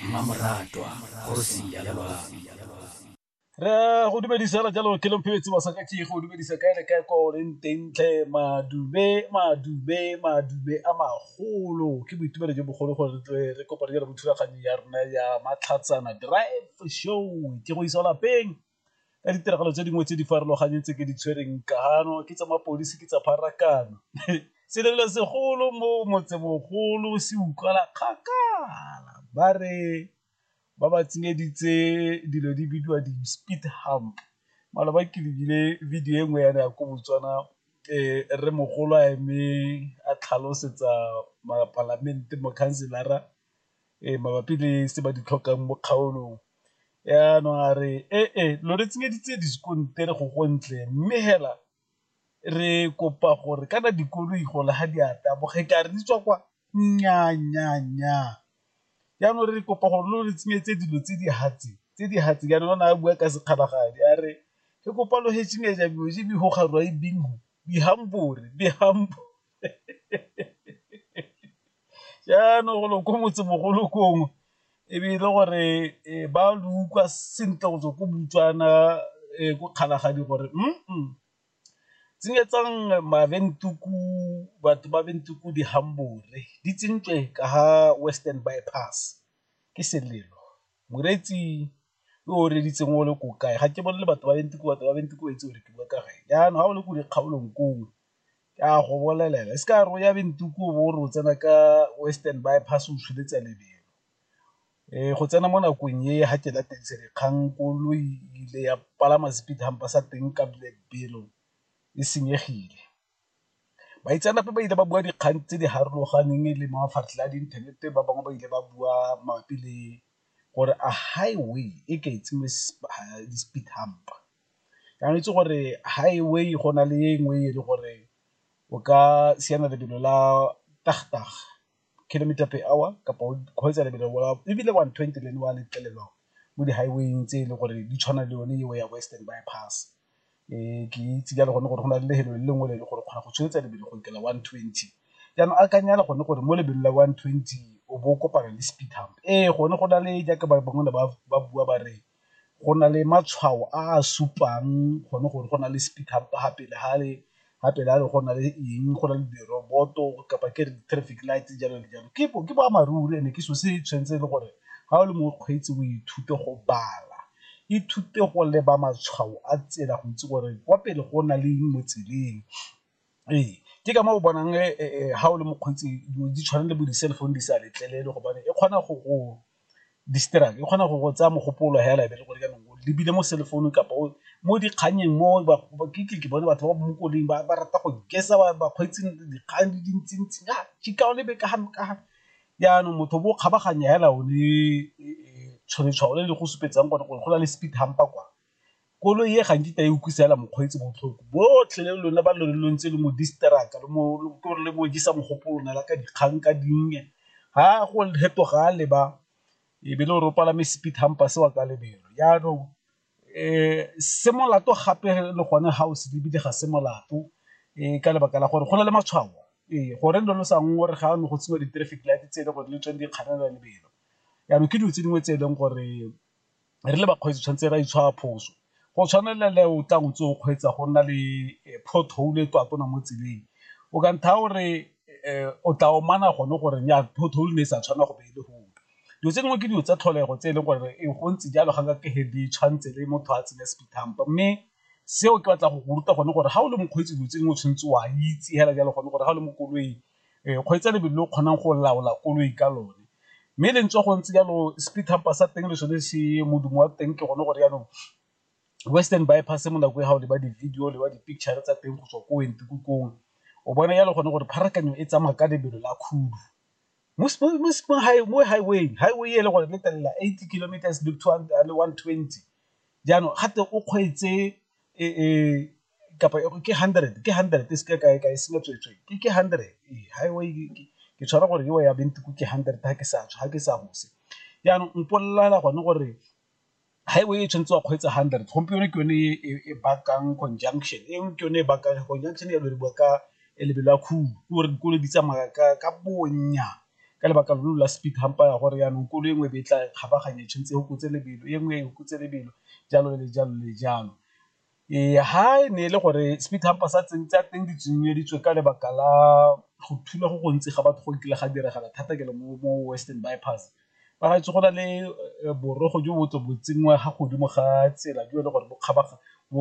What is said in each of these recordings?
mmamoratwa kgosi ya re go dumedisa la jalo ke lophetse masaka ke go dumedisa kae le kae kwa o leng teng tlhe madube madube madube a magolo ke boitumelo jo bogolo gore re tle re kopane jalo mo thulaganyo ya rona ya matlhatsana drive show ke go isa lapeng ka ditiragalo tse dingwe tse di farologaneng tse ke di tshwereng ka gano ke tsa mapodisi ke tsa pharakano selelo segolo mo motsemogolo se utlwala kgakala ba re ba ba tsenyeditse dilo di bidiwa di-speed hump mala ba ke lebile video e nngwe yana ya ko botswana um re mogolo a eme a tlhalosetsa mapalamente mokhanselara mabapi le se ba di tlhokang mo kgaolong. Jaanong a re e-e lo re tsenyeditse diskontiri go go ntle mme fela re kopa gore kana dikoloi gole ga di a taboga e ka re di tswa kwa, nnyaa, nnyaa, nnyaa. Jaanong re kopa gore lo re tsenyetse dilo tse di tse di jaanong o ne a bua ka sekgalagadi a re re kopa lo jaanong go lo ko motsemogolo kongwe e be e le gore eh, ba lo utlwa sentle go tswa ko butswana eh, ko kgalagadi gore mm tsenyetsang maventuku batho ba ventuku dihambore di tsentswe ka ga western bypass ke selelo moretsi yo o reditseng o le ko kae ga ke bolele batho ba ventuku batho ba ventuku ba itse gore ke bua ka gae jaanong ga o le ko dikgaolong kongwe ke a go bolelela, e se ka ya re o ya Windhoek o bo o re o tsena ka Western Bypass o tsholetse lebelo. Go tsena mo nakong e ga ke lateleditswe dikgang koloi ile ya palama speed hump-a sa teng ka lebelo e senyegile. Baitseanape ba ile ba bua dikgang tse di farologaneng le mafaratlhatlha a di inthanete ba bangwe ba ile ba bua mabapi le gore a highway e ke e tsenngwe di-speed hump-a. Ke akanyetse gore highway go na le e nngwe e le gore o ka siana lebelo la kilometer per hour kapa o kgweetsa lebelo la ebile one twenty le yone wa letlelelwa mo di-highway-ing tse e le gore di tshwana le yone eo ya Western Bypass. Ke itse jalo gone gore go na le le lengwe le e le gore o kgona go tsweletsa lebelo go lokela one twenty, jaanong akanya le gone gore mo lebelo la one twenty o bo o kopana le speed hump, ee gone go na le jaaka ba bangwe ba bua ba re go na le matshwao a a supang gone gore go na le speed hump fa pele ga le fa pele ga le go na le eng go na le diroboto kapa ke re di-traffic lights jalo le jalo, ke boammaaruri and-e ke selo se tshwanetseng e le gore ga o le mokgweetsi o ithute go bala, ithute go leba matshwao a tsela go itse gore kwa pele go na le eng mo tseleng. Ee, ke ka moo o bonang ga o le mokgweetsi di tshwana le bo di-cell phone di sa letlelelwe gobane e kgona go go distract e kgona go go tsaya mogopolo hela ebe le gore jaanong o lebile mo cell phone kapa o mo dikgannyeng mo ke bone batho ba ba mo koleng ba ba rata go gesa bakgweetsi dikgang di dintsi-ntsi ka tšhika o lebe ka ga ka ga jaanong motho bo kgabaganya hela o le tshwantshwano le go supetsang gore go na le speed hump-a kwa. Koloi e ga nkitla e utlwisa fela mokgweetsi botlhoko, botlhe le lona ba lo ntse le mo distract-a le mo le mo jesa mogopolo lona la ka dikgang ka dinnye, ga go fetoga a leba e be le gore o palame speed humper se wa ka lebelo. Jaanong se molato gape le gone ga o se lebile ga se molato ka lebaka la gore go na le matshwao, ee gore lo lo sa ngorega ga ne go tseiwa di-traffic light tse e le gore le tsone di kganela lebelo, jaanong ke dilo tse dingwe tse e leng gore re le bakgweetsi tshwanetse re a itshwara phoso, go tshwana le le o tlang o ntse o kgweetsa go nna le pothole e tatona mo tseleng o ka ntha o re o tla omanya gone gore ya pothole ne e sa tshwanela go be e le gone. Dilo tse dingwe ke dilo tsa tlholego tse e leng gore e go ntse jalo ga nkake ge di tshwanetse le motho a tsenya speed hump-a, mme seo ke batla go go ruta gone gore ga o le mokgweetsi dilo tse dingwe o tshwanetse o a itse fela jalo gone gore ga o le mo koloing. kgweetsa lebelo le o kgonang go laola koloi ka lone, mme le ntse go ntse jalo speed hump-a sa teng le sone se modumo wa teng ke gone gore jaanong western bypass mo nako e ga o leba di-video le ba di-picture tsa teng go tswa ko o bona jalo gone gore pharakano e tsamaya ka lebelo la khudu mo highway-ing, highway e le gore le tella eighty kilometers le one twenty jaanong ga twe o kgweetse kapa ke hundred ke hundred e seke kae kae selo tsweetswe ke ke hundred ke tshwara gore ewa ya bentiko ke hundred ga ke sa ga ke sa gose jaanong mpolelela gone gore highway e tshwanetse wa kgweetsa hundred gompieno ke yone e bakang conjunction e ke yone e bakang conjunction ya loriwa ka lebelo la khudu ke gore dikolo di tsamaya ka bonya ka lebaka lo la speed hampa ya gore yaanong kolo e nngwe be tla kgabaganya tshwanetse go kutse lebelo e nngwe go kutse lebelo jalo le jalo le jalo Ee, ha e ne e le gore speed hump-a sa teng di tsenyeditswe ka lebaka la go thula go gontsi ga batho go nkile ga diragala thata ke le mo Western Bypass, ba retse go na le borogo jo bo tle bo tsenngwa fa godimo ga tsela jo e le gore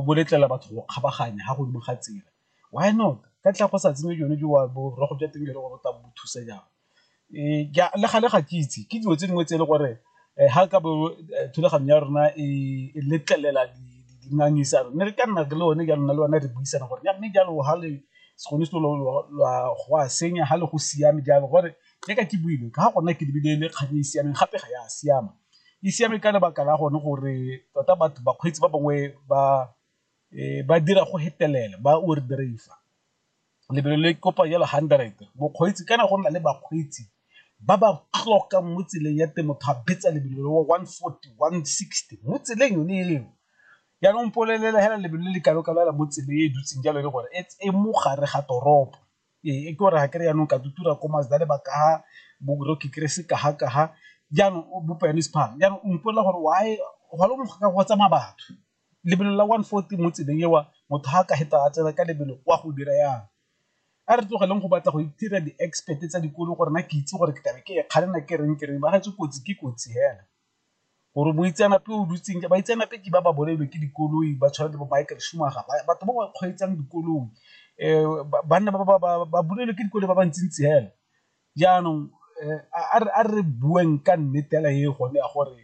bo letlelela batho go kgabaganya fa godimo ga tsela why not ka ntlha ya go sa tsenye jone borogo jwa teng jo e le gore bo tla bo thusa jang. Le gale ga ke itse ke dilo tse dingwe tse e le gore ga ka bo thulaganyo ya rona e letlelela dingangisano ne re ka nna le one jaanong nna le wena re buisana gore jaanong mme jalo ga le se gone selo go a senya ga le go siame jalo gore le ka ke buile ka ga gona ke lebile le kgang e e siameng gape ga ya siama, e siame ka lebaka la gone gore tota batho bakgweetsi ba bangwe ba dira go fetelela ba over drive-a. lebelo le kopa yellow hundred mokgweetsi kana go nna le bakgweetsi ba ba tlokang mo tseleng ya teng motho a betsa lebelo le one forty, one sixty mo tseleng yone eo jaanong mpolelela fela lebelo le le kalo-kalo fela mo tseleng e dutseng jalo e le gore e mo gare ga toropo ee ke gore ga kere jaanong ka tutura ko Mazda le ba kaga bo Rocky Crescent kaga-kaga jaanong bo Pianist Park jaanong o mpolella gore why go tsamaya batho. lebelo la one fourty mo tseleng eo motho ga a ka feta a tsena ka lebelo o a go dira yang, a re tlogeleng go batla go itira di-expert tsa dikolo gore na ke itse gore ke tlabe ke e kgalela ke reng ke reng ba retse kotsi ke kotsi fela. Gore moitseanape o dutseng baitseanape ke ba ba bolailwe ke dikoloi ba tshwana le bo Michael Schumacher batho ba ba kgweetsang dikoloi banna ba bolailwe ke dikoloi ba ba ntsi-ntsi fela, jaanong a re bueng ka nnete fela e gone ya gore.